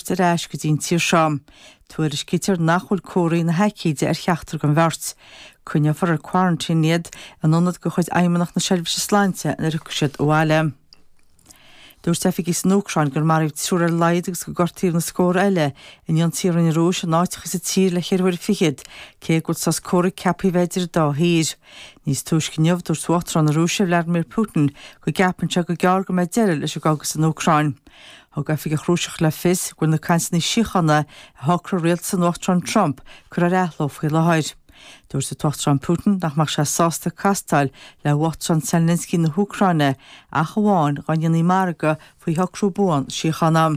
ar ais go dtí an tír seo. Tuairiscítear nach bhfuil comharthaí na haicíde ar cheachtar den bheirt. Coinneofar ar 'quarantine' iad in ionad de chuid Fheidhmeannacht na Seirbhíse Sláinte nuair a thiocfaidh siad abhaile. Dúirt oifigigh san Úcráin gur maraíodh triúr ar a laghad agus gur gortaíodh na scór eile in ionsaithe a rinne an Rúis in áiteacha sa tír le cheithre huaire fichead, cé go bhfuil sos comhraic ceaptha a bheith idir an dá thír. Níos túisce inniu, dúirt Uachtarán na Rúise, Vladimir Putin, go gceapann sé gur gearr go mbeidh deireadh leis an gcogadh san Úcráin. Thug oifigeach Rúiseach le fios go bhfuil na cainteanna síochána a shocraigh rialtas an Uachtaráin Trump curtha ar athló faoi láthair. Dúirt an tUachtarán Putin nach mbeadh sé sásta castáil le hUachtarán Zelensky na hÚcráine ach amháin dá ndéanfaí margadh faoi shocrú buan síochána.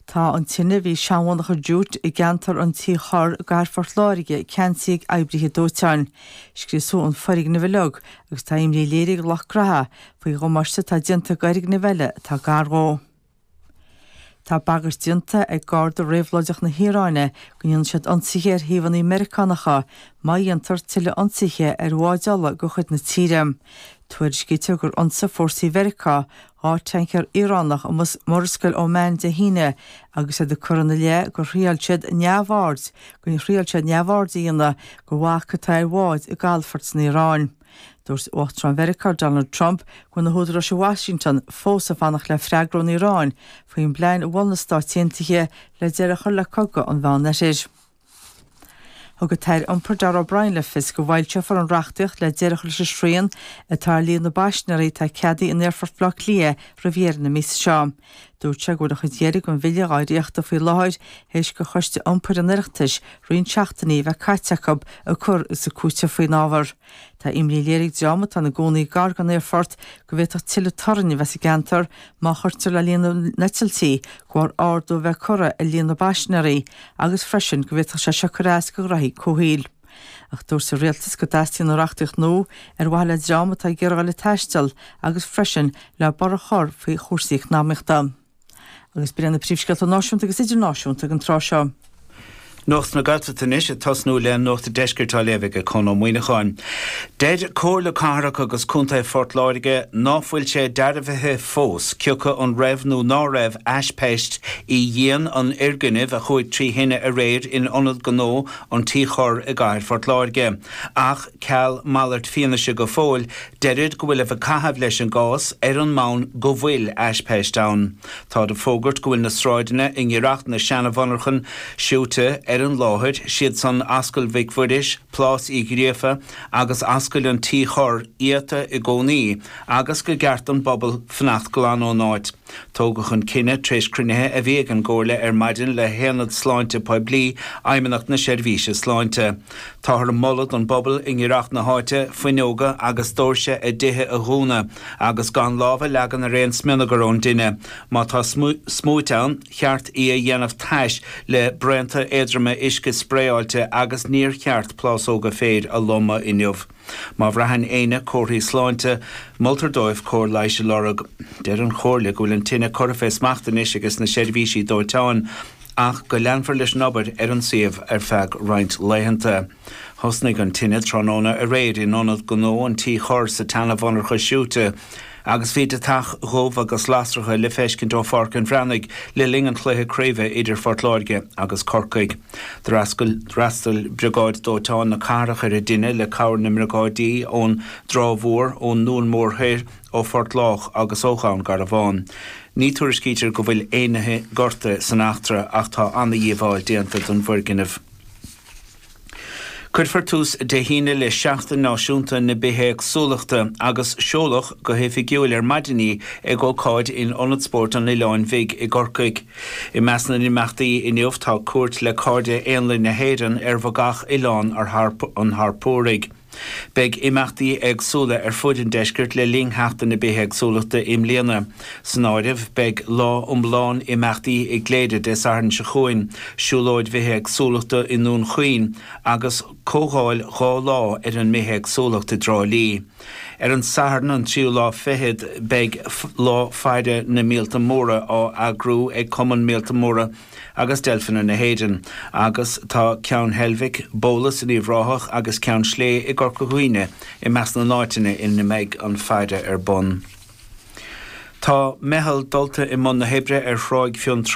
Tá an tine a bhí i seanmhonarcha Jute i gceantar an Tí Chorr i gcathair Phort Láirge ceansaithe ag oibrithe dóiteáin. Scriosadh an foirgneamh uilig agus tá imní léirithe ag lucht graithe faoi dhamáiste atá déanta go fhoirgnimh eile atá gar dhó. Tá bagairt déanta ag Garda Réabhlóideach na hIaráine go ndéanfaidh siad ionsaithe ar shuíomhanna Meiriceánacha má dhéantar tuilleadh ionsaithe ar bháid ola de chuid na tíre. Tuairiscítear gur ionsaigh fórsaí Mheiriceá dhá thancaer Iaránach i Murascaill Oman Dé hAoine agus iad ag cur ina leith gur thriail siad neamhaird gur thriail siad neamhaird a dhéanamh go bhac atá ar bháid i gcalafoirt san Iaráin. Dúirt Uachtarán Mheiriceá Donald Trump go bhfuil na húdaráis i Washington fós ag fanacht le freagra ón Iaráin faoin bplean a mhol na Stáit Aontaithe le deireadh a chur le cogadh an Mheánoirthir. Thug an tAire Iompair Darragh O'Brien le fios go bhfoilseofar an reachtaíocht le deireadh a chur leis an srian atá ar líon na bpaisinéirí atá ceadaithe in Aerfort Bhaile Átha Cliath roimh dheireadh na míosa seo. Dúirt sé go bhfuil an chuid dheiridh den bhille dhá dhréachtadh faoi láthair théis do Choiste Iompair an Oireachtais roinnt seachtainí a bheith caite acu ag cur is ag cúiteamh faoin ábhar. Tá imní léirithe ag dream atá ina gcónaí gar don aerfort go bhféadfadh tuilleadh torainn a bheith sa gceantar má chuirtear le líon na n-eitiltí, go bharr ardú a bheith curtha ar líon na bpaisinéirí agus freisin go bhféadfadh sé seo cur as go ghraithí comhshaoil. Ach dúirt an rialtas go dteastaíonn an reachtaíocht nua ar mhaithe le dream atá ag iarraidh a bheith ag taisteal agus freisin le borradh a chur faoi chúrsaí eacnamaíochta. Agus b'in iad na príomhscéalta náisiúnta agus idirnáisiúnta ag an tráth seo. Nuacht na Gaeltachta anois ag tosnú le nuacht an deiscirt á léamh ag Conn Ó Muíneacháin. Deir Comhairle Cathrach agus Contae Phort Láirge ná fuil sé dearbhaithe fós cioca an raibh nó ná raibh aispeist i ndíon an fhoirgnimh a chuaigh trí thine aréir in ionad gnó an Tí Chorr i gcathair Phort Láirge ach ceal malairt fianaise go fóill Deirid go bhfuiltear ag caitheamh leis an gcás ar an mbonn go bhfuil aispeist ann. Táid ag fógairt go bhfuil na sráideanna i ngiorracht na seana-mhonarchan siúite ar an láthair, 's iad san Ascaill Mhic Mhuiris, Plás Uí Ghríofa agus Ascaill an Tí Chorr iata i gcónaí agus go gceart don bpobal fanacht glan ón áit. Tógadh an cinneadh tar éis cruinnithe a bhí ag an gComhairle ar maidin le hAonad Sláinte Poiblí Fheidhmeannacht na Seirbhíse Sláinte. Táthar ag moladh don bpobal i ngiorracht na háite fuinneoga agus doirse a dtithe a dhúnadh agus gan lámh a leagan ar aon smionagar ón dtine. Má tá smúit ann, cheart í a dhéanamh tais le braonta éadroma uisce spraeáilte agus níor cheart plásóga féir a lomadh inniu. Má bhraitheann éinne comharthaí sláinte, moltar dóibh cóir leighis a lorg. Deir an Chomhairle go bhfuil an tine curtha fé smacht anois aiges na seirbhísí dóiteáin, ach go leanfar leis an obair ar an suíomh ar feadh roinnt laethanta. Thosnaigh an tine tráthnóna aréir in ionad gnó an Tí Chorr sa tseana-mhonarcha siúite. Agus bhí deatach dhubh agus lasracha le feiscint ó Pháirc an Bhreathnaigh le linn an chluiche craoibhe idir Phort Láirge agus Corcaigh. D'fhreastail briogáid dóiteáin na cathrach ar an dtine le cabhair na mbriogáidí ón dTrá Mhór, ón nDún Mór Thoir, ó Phort Lách agus ó Dhún Garbhán. Ní tuairiscítear go bhfuil éinne gortaithe san eachtra ach tá ana-dhíobháil déanta don bhfoirgneamh. Cuirfear tús Dé hAoine le Seachtain Náisiúnta na Bithéagsúlachta agus seoladh go hoifigiúil ar maidin í ag ócáid in Ionad Spóirt an Oileáin Bhig i gCorcaigh. I measc na n-imeachtaí inniu tá cuairt le Cairde Éanlaith na hÉireann ar bhogach Oileán an Harpóraigh, Beidh imeachtaí éagsúla ar fud an deiscirt le linn Sheachtain na Bithéagsúlachta i mbliana. San áireamh beidh lá iomlán imeachtaí i gCléire Dé Sathairn seo chugainn, siúlóid bhithéagsúlachta i nDún Chaoin, agus comhdháil dhá lá ar an mbithéagsúlacht i dTrá Lí. Ar an Satharn an tríú lá fichead beidh Lá Faire na Míolta Móra á eagrú ag Cumann Míolta Móra agus deilfeanna na hÉireann, agus tá Ceann Heilbhic, Bólas in Uíbh Ráthach agus Ceann Sléibhe i gCorca Dhuibhne i measc na n-áiteanna ina mbeidh an faire ar bun. Tá meitheal dulta i mbun na hoibre ar Thráigh Fionn Trá.